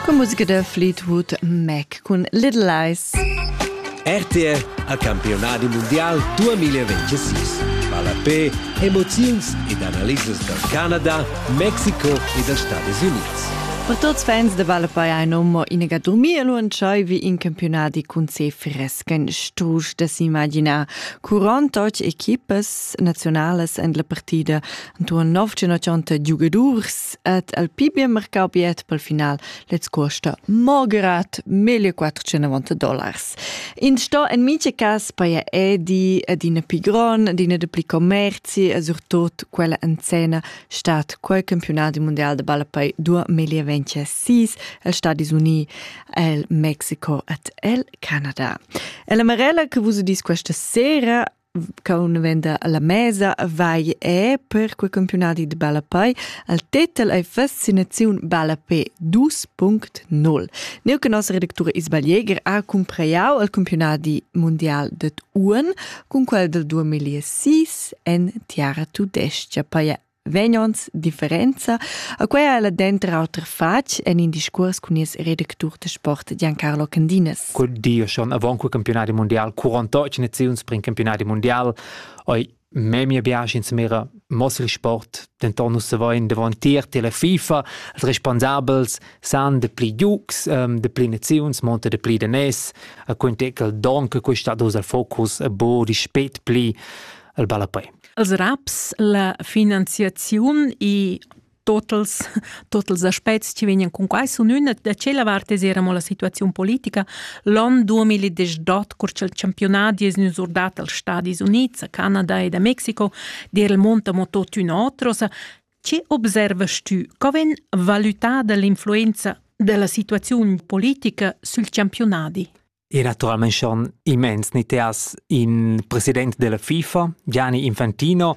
Con musica da Fleetwood Mac cun Little Lies. RTR a campionadi mondial 2026. Ballapé, emoziuns ed analisas dal Canada, Mexico e dals Stati Unids. Per tuts fans de Ballapei ein nommo inega dormir e lu entscheivi in campionadi cun se fresken strusch da s'imaginar. Curant och equipas nazionales en la partida Antoine Novcin och Giugadurs et el pi bien mercau biet pel final lez costa morgerat 1490 dollars. In sto en mice cas paia edi ed ina pi gron, d'ina de pli commerci e surtot quella en scena stat quel campionat mondial de balla poi 2026 el Stadis Uni, el Mexico et el Canada. E la Marella che vus udis questa sera Caun venda alla mesa vai e per quei campionadi de ballapei al tetel ei fascinaziun ballapé 2.0. Neu che nossa redactura Isabel Jäger ha cumpraiau al campionadi mundial ded Uhren cun quel del 2006 en Tiara Tudestia. Poi vegn ons differenza. A quei ha la denter auter fatg en in discurs cun il redactur de sport Giancarlo Candinas. Quel di schon avant quel campionat mondial 48 naziuns per in campionat mondial ei memia biasch insmira mosri sport denton nus savein davantier te la FIFA als responsabels san de pli giugs ähm, de pli naziuns monta de pli de nes a quintecal don che questa dus al focus a bo di spet pli al ballapei Els raps la finanziaziun e totals totals aspects che vegnan con quai sun üna da tschella vart es era mo la situaziun politica l'on 2018 cur cha'l championat es gnü surdat als Stadis Units, a Canada ed a Mexico der el monta mo tot ün'otra. Sa, che observas tu? Co ven valutada l'influenza della situaziun politica sül championadi? E naturalmein schon immens ni te has in president della FIFA, Gianni Infantino,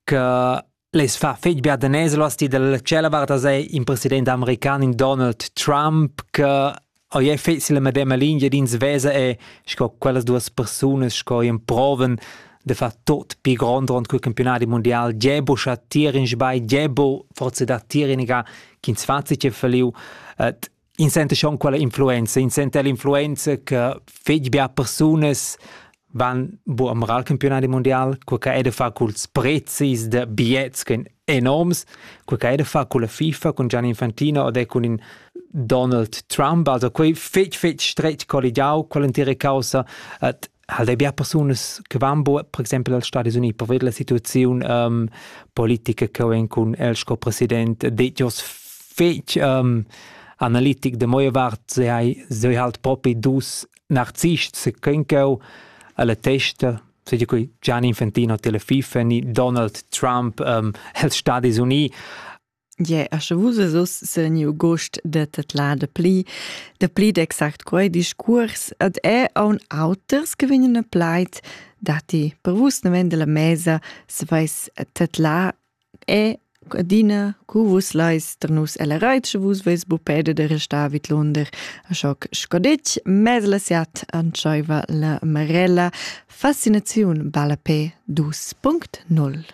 che les fa fetg bia da neslos ti dalla cella varta sei in president american in Donald Trump che oi è fetz la medema linea d'ins vesa e sco quellas duas persunas sco in proven de fa tot pi grond rond cul campionati mondial Gebo scha tir in sbai Gebo forse da tir in ga ch'ins fazi che feliu et In senta schon quella influenza, in senta l'influenza che fetg bia persunas van bu am al campionadi mundial, quei che ei da far culs prezis da biets che ein enorms, quei che ei da far culla FIFA cun Gianni Infantino ed è cun in Donald Trump, also quei fetg fetg stretg colligiau quell'entira caussa, et halt ei bia persunas che van bo per exempel als Stadis Uniti per vedere la situazione um, politica che vem cun el sco president detto fetg um, analitic de moje vart se hai se halt propi dus narzists se kenko alla testa se di qui Gianni Infantino tele FIFA ni Donald Trump um, els Stadis Uniti Ie, a sche vus es uss seniu gust da tedlar da pli, da pli d'exact quei discurs, ad è aun auters che vegnan a plaid, datti per vus naven dalla mesa saveis tedlar è adina cu vus leis tar nus ella reit, sche vus veis bupeda da restar vid lunder, a schoc sco ditg, mez la siat antscheiva la Marella. Fascinaziun balla pe 2.0.